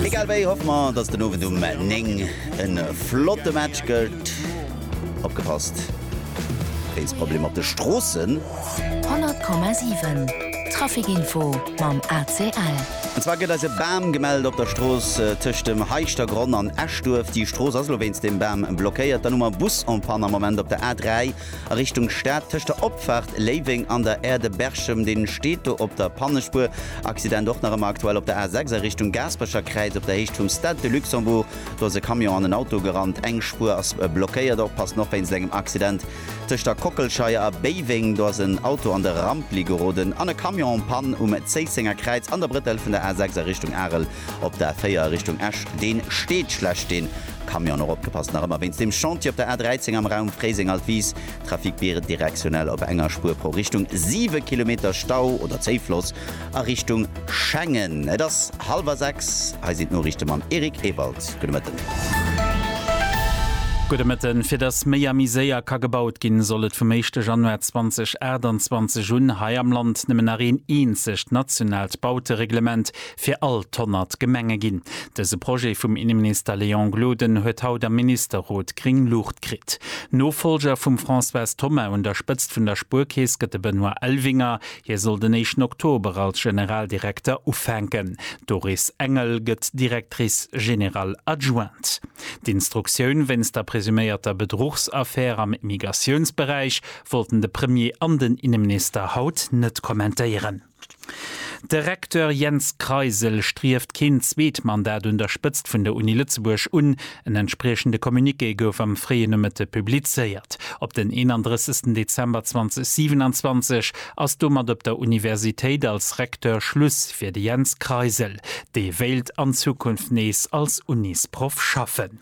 Egal wéi hoffe mer, dass den Owend um 9 e flotte Match gëtt. Opgepasst wéinst Problemer op de Stroossen. 100,7 Trafikinfo mam ACL. An zwar gëtt eis e Bam gemellt op der Strooss tëscht dem Heischtergronn an Eschduerf. Déi Strooss ass elo wéinst deem Bam blockéiert. Dann hu mer Bus en panne am Moment op der A3. A Richtung Stad, tëscht der Opfaart Léiweng an der Aire de Berchem, deen steet do op der Pannespuer. Accident och nach ëmmer aktuell op der A 6 a Richtung Gaasperecherkräiz op der Héicht vum Stade de Luxembourg. Do ass e Camion an en Auto gerannt, eng Spuer ass blockéiert. Oppassen och wéinst engem Accident tëscht der Kockelscheier a Béiweng, do ass en Auto an de Rampli geroden an e Camion en Panne um Zéissenger Kräiz an der Brëtell vun der A 6 a Richtung Arel. op der A4 Richtung Esch, deen steet schlecht deen Camion, och opgepasst nach ëmmer wéinst deem Chantier op der A13 am Raum Fréiseng-Altwis, Trafic bidirektionell op enger Spuer pro Richtung, 7 Kilometer Stau oder Zéifloss a Richtung Schengen. Et ass hallwer 6, hei sinn d'Noriichte mam Eric Ewald. Gudde Mëtten. Gudde Mëtten. Fir datt méi a méi séier ka gebaut ginn, soll et vum éischte Januar 2028 un hei am Land nëmmen nach een eenzegt nationaalt Bautereglement, fir all d'honnert Gemenge ginn. Dëse Projet vum Inneminister Léon Gloden huet haut am Ministerrot gréng Luucht kritt. Nofollger vum Françoise Thoma un der Spëtzt vun der Spuerkeess gëtt de Benoît Elvinger. Hie soll den éischten Oktober als Generaldirekter ufänken. D'Doris Engel gëtt Directrice générale adjointe. D'Instruktioun wéinst der presuméierter Bedruchsaffär am Immigratiounsberäich wollten de Premier an den Inneminister haut net kommentéieren. De Recteur Jens Kreisel strieft keen zweet Mandat un der Spëtzt vun der Uni Lëtzebuerg un. En entspriechende Communiqué gouf am fréien Nomëtte publizéiert. Op den 31 Dezember 2027 ass domat op der Universitéit als Recteur Schluss fir de Jens Kreisel. Dee wéilt an Zukunft nees als Unisproff schaffen.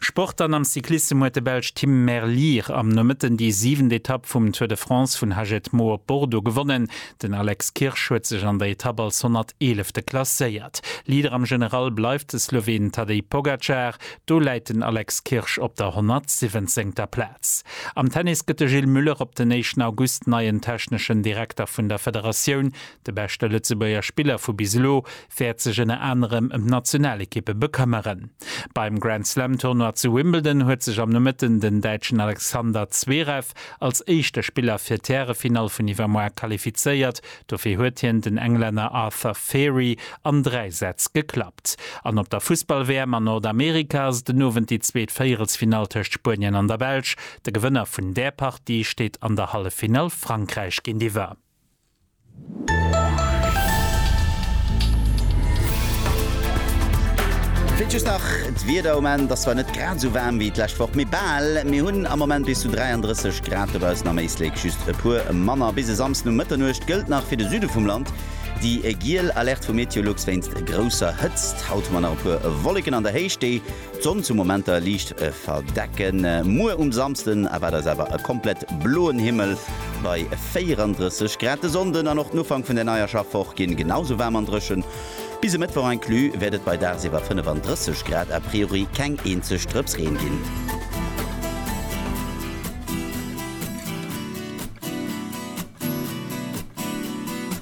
Sport An am Cyclissem huet de Belsch Tim Merlier am Nomëtten déi siwent Etapp vum Tour de France vun Hagetmau op Bordeaux gewonnen. Den Alex Kirsch huet sech an der Etapp als 111. klasséiert. Leader am General bleift de Sloween Tadej Pogacar, do läit den Alex Kirsch op der 117. Plaz. Am Tennis gëtt de Gilles Muller op den éischten August neien techneschen Direkter vun der Federatioun. De beschte Lëtzebuerger Spiller vu bis elo wäert sech ënner anerem ëm d'Nationalekippe bekëmmeren. Beim Grand Slam Tournoi zu Wimbledon huet sech am Nomëtten den Däitschen Alexander Zverev als éischte Spiller fir d'Härefinall vun iwwermoar qualifizéiert. Dofir huet hien den Englänner Arthur Feri an 3 Sätz geklappt. An op der Fussball-WM an Nordamerika ass et den Owend déi zweet Véierelsfinall tëscht Spuenien an der Belsch. De Gewënner vun där Partie steet an der Halleffinall Frankräich géintiwwer. Fehlt just nach d'Wieder um Enn. T'ass zwar net grad esou waarm wéi d'lescht Woch, mee bal. Mir hunn am Moment bis zu 33 Grad dobaussen, am Éislek just e puer manner. Bis e Samsden um Mëtternuecht gëllt nach fir de Süde vum Land déi giel Alerte vu Meteolux wéinst grousser Hëtzt. Haut hu mer nach e puer Wolleken an der Héicht, déi D'Sonn zu Momenter liicht verdecken. Muer um Samsden erwaart eis awer e komplett bloen Himmel bei 34 Grad. De Sonnden an och den Ufank vun der neier Schaffwoch ginn genau sou waarm an dréchen. Bis e Mëttwoch inclus wäert et bei dagsiwwer 35 Grad a priori keng eenzeg Drëps Reen ginn.